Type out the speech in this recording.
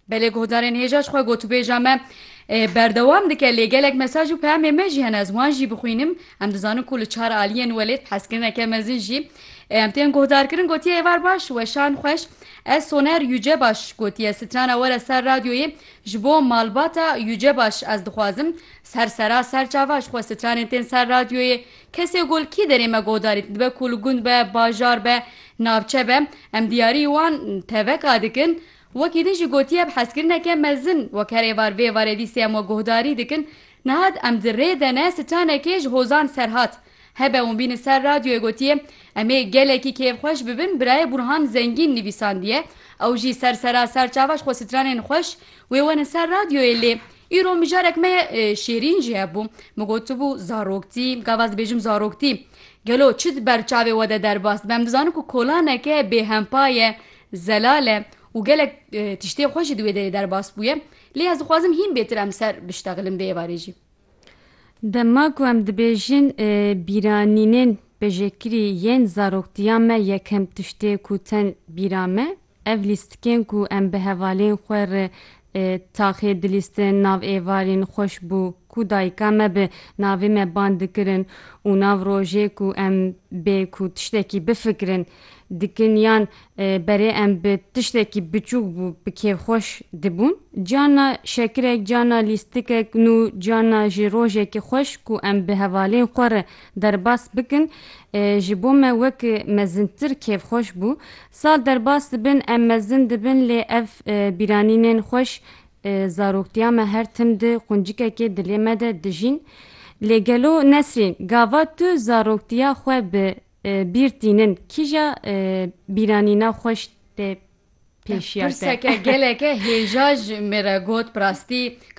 Belê guhdarên hêja ji xwe gotûbêja me berdewam dike lê gelek mesaj û peyamê me jî hene ez wan jî bixwînim em dizanin ku li çar aliyên welêt hezkirineke mezin jî em tên guhdarkirin gotiye êvar baş weşan xweş ez soner yüce baş gotiye strana were ser radyoyê ji bo malbata yüce baş ez dixwazim ser sera ser çava ji xwe stranên tên ser radyoyê Kesê ku li kî derê me godarîn, dibe ku li gund be, bajar be, navçe be, em diyarî wan teveka dikin. Wekî din jî gotiye bi hezkirineke mezin wek her êvar vê êvarê dîsê em we guhdarî dikin. Nihat em di rê de ne sitanekê ji hozan serhat. Hebe hûn bînin ser radyoyê gotiye, Em ê gelekî kêfxweş bibin birayê Burhan Zengîn nivîsandiye, ew jî ser sera ser çava ji xwe sitranên xweş wê werin ser radyoyê lê Îro mijarek me Şêrîn jî hebû. Min gotibû zaroktî, gava ez dibêjim zaroktî. Gelo çi di ber çavê we de derbas dibe? Em dizanin ku kolaneke bêhempa ye, zelal e û gelek tiştên xwe jî di wê derê derbas bûye. Lê ez dixwazim hîn bêtir em ser biştexilin vê êvarê jî. Dema ku em dibêjin bîranînên pejekirî yên zaroktiya me yekem tiştê ku tên bîra me Ev lîstikên ku em bi hevalên xwe re taxê dilîstin nav êvarîn xweş bû ku dayika me bi navê me bang dikirin û nav rojê ku em bê ku tiştekî bifikirin dikin yan berê em bi tiştekî biçûk bû bi kêfxweş dibûn. Carna şekirek, carna lîstikek nû carna jî rojekî xweş ku em bi hevalên xwe re derbas bikin ji bo me wek mezintir kêfxweş bû. Sal derbas dibin, em mezin dibin lê ev bîranînên xweş zaroktiya me her tim di quncikekê dilê me de dijîn. Lê gelo Nesrîn gava tu zaroktiya xwe bi bîr tînin kîja bîranîna xweş tê pêşiya te? Pirseke geleke hêja ji min re got bi rastî.